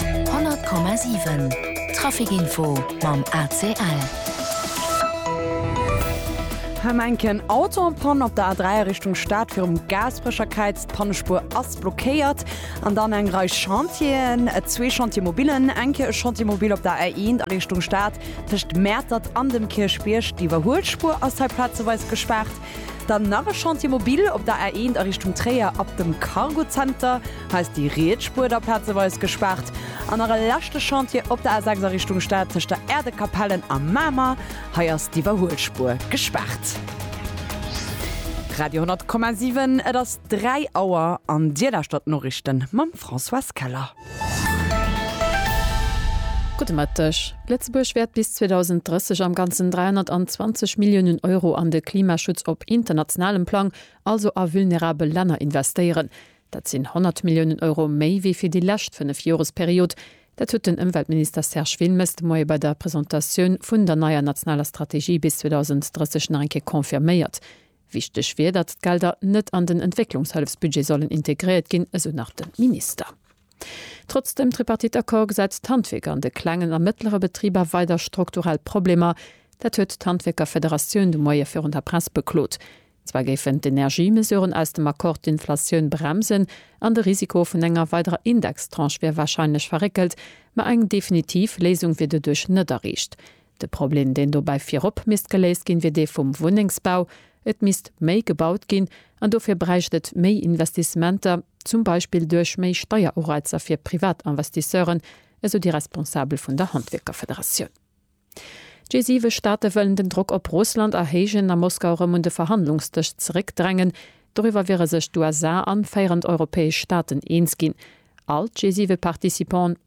100,7 Trafic Info mam ACL. Hem enken Auto am Pann op der A3 a Richtung Stad virum Gaasperecherkäiz. D'Pannespuer ass blockéiert. An dann eng Rei Chantieren, zwee Chantiermobilen, enke e Chantiermobil op der A1 a Richtung Stad tëscht Mäertert an dem Kierchbierg. D'Iwwerhuelspuer ass hei plazeweis gespaart. Dann nach e Chantier mobil op der A1 a Richtung Tréier ab dem Cargozenter. Hei ass déi riets Spuer da plazeweis gespaart. An nach e leschte Chantier op der A6 a Richtung Stad tëscht der Erdekapellen a Mamer. Hei ass d'Iwwerhuelspuer gespaart. Radio 10,7, Et ass 3 Auer an Dir lauschtert d'Noriichten mam Françoise Keller. Gudde Mëtteg. Lëtzebuerg wäert bis 2030 am Ganzen 320 Milliounen Euro an de Klimaschutz op internationalem Plang, also a vulnerabel Länner investéieren. Dat sinn 100 Milliounen Euro méi wéi fir déi lescht Fënnefjoresperiod. Dat huet den Ëmweltminister Serge Wilmes de Moie bei der Presentatioun vun der neier nationaler Strategie bis 2030 nach eng Kéier confirméiert. Wichteg wier, datt d'Gelder net an den Entwécklungshëllefsbudget sollen integréiert ginn, esou nach de Minister. Trotz dem Tripartite-Accord gesäit d'Handwierk an de klengen a mëttlere Betriber weider strukturell Problemer. Dat huet d'Handwierkerfederatioun de Moie virun der Press beklot. Zwar géifen d'Energiemesuren aus dem Accord d'Inflatioun bremsen an de Risiko vun enger weiderer Indextranche wier warscheinlech verréckelt, ma eng definitiv Léisung wier doduerch net erreecht. De Problem, deen dobäi virop misst geléist ginn, wier dee vum Wunnengsbau. Et misst méi gebaut ginn an dofir bräicht et méi Investissementer, zum Beispill duerch méi Steierureizer fir Privatinvestisseuren, esou déi Responsabel vun der Handwierkerfederatioun. D'G7 Staate wëllen den Drock op Russland erhéijen a Moskau erëm un de Verhandlungsdësch zeréckdrängen. Doriwwer wiere sech d'USA an féierend europäesch Staaten eens ginn. All d'G7 Participanten,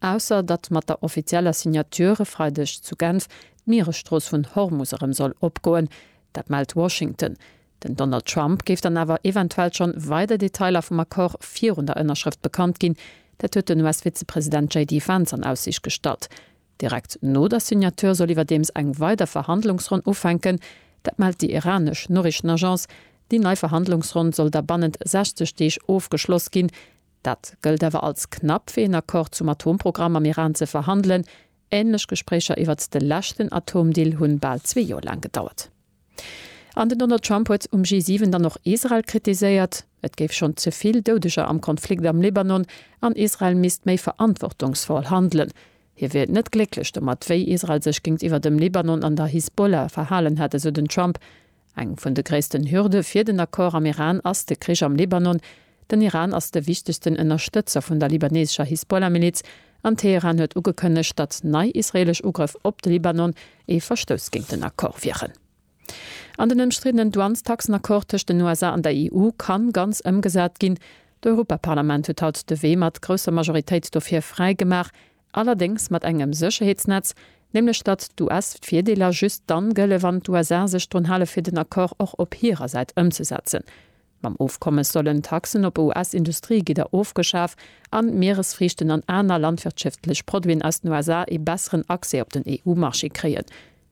Ausser datt mat der offizieller Signature e Freideg zu Genf d'Mieresstrooss vun Hormus erëm soll opgoen. Dat mellt Washington. Den Donald Trump géif dann awer eventuell schonn weider Detailer vum Accord virun der Ënnerschrëft bekannt ginn. Dat huet den US-Vizepresident JD Vance an Aussiicht gestallt. Direkt no der Signature soll iwwerdeems eng weider Verhandlungsronn ufänken. Dat mellt déi iranesch Noriichtenagence. Déi nei Verhandlungsronn soll da bannent 60 Deeg ofgeschloss ginn. Dat gëllt awer als knapp fir een Accord zum Atomprogramm am Iran ze verhandelen. Ähnlech Gespréicher iwwert de leschten Atomdeal hunn bal zwee Joer laang gedauert. An den Donald Trump huet um G7 dann och Israel kritiséiert. Et géif schonn ze vill Doudeger am Konflikt am Libanon an Israel misst méi verantwortungsvoll handelen. Hie wier net glécklech domat, wéi Israel sech géintiwwer dem Libanon an der Hisbollah verhalen hätt, esou den Trump. Eng vun de gréissten Hürde fir den Accord am Iran ass de Krich am Libanon. Den Iran ass de wichtegsten Ënnerstëtzer vun der libanesescher Hisbollah-Miliz, an Teheran huet ugekënnegt, datt nei israeelesch Ugrëff op de Libanon ee Verstouss géint den Accord wieren. An den ëmstriddenen Douanestaxen-Accord tëscht den USA an der EU ka ganz ëmgesat ginn. D'Europaparlament huet haut de Wee mat grousser Majoritéit dofir fräi gemaach, Allerdéngs mat engem Sécherheetsnetz, nämlech datt d'US d'Virdeeler just dann gëlle wann d'USA sech drun hale fir den Accord och op hirer Säit ëmzesetzen. Mam Ofkommes sollen d'Taxen op US-Industriegidder ofgeschaf an d'Mieresfriichten an aner landwirtschëftlech Produiten aus den USA ee besseren Accès op den EU-Marché kréien.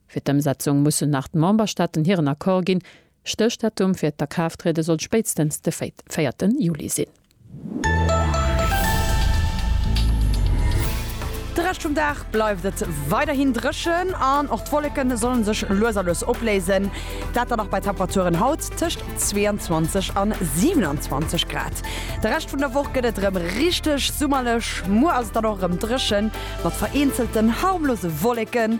Fir d'Ëmsetzung mussen nach d'Memberstaaten hiren Accord ginn. Stéchdatum fir d'Akraafttriede sollt spéitstens de véierte Juli sinn. De Rescht vum Dag bleift et weiderhin dréchen an och d'Wolleke solle sech lues a lues opléisen. Dat dann nach bei Temperaturen haut tëscht 22 a 27 Grad. De Rescht vun der Woch gëtt et erëm richteg summerlech. Muer ass et dann och erëm dréchen, mat vereenzelten harmlose Wolleken.